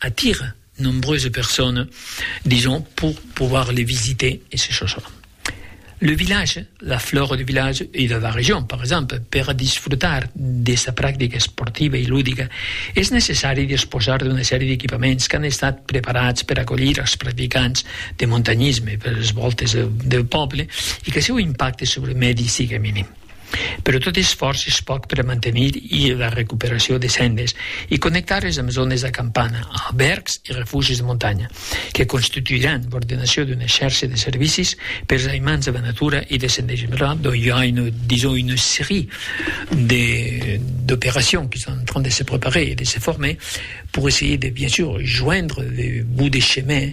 attire nombreuses personnes, disons, pour pouvoir les visiter et ces choses-là. Le village, la flore du village e de la region, per exemple, per a disfrutar de sa practica esportiva e ludica, es necessari disposar d'una sèrie d'equipaments qu'an estat preparats per acolhir als practicants de montanhisme per es vòltes del pòble e que seu impacte sobre lo mèdi siga minim. Però tot esfòrç es pòc per a mantenir i la recuperacion de sendes e connectar-les amb zònes d'acampana, albèrgs e refugis de montanha, que constituiràn l'ordenacion d'una xèrcia de servicis pers aimants de la natura e de sendejament. Donc i a una, disons, una serie de, d'opérations qui sont en train de se préparer et de se former pour essayer de, bien sûr, joindre le bout de chemin,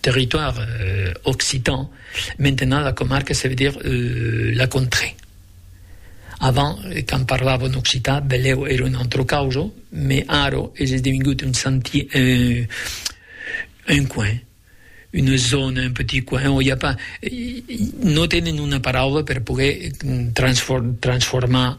Territoire occitan, maintenant la comarque se veut dire la contrée. Avant quand parlava en occitan beleu era una autra causa, mais ara es esdevingut un senti un coin, una zona, un petit coin on i a pas, no tenen una paraula per poguer transformar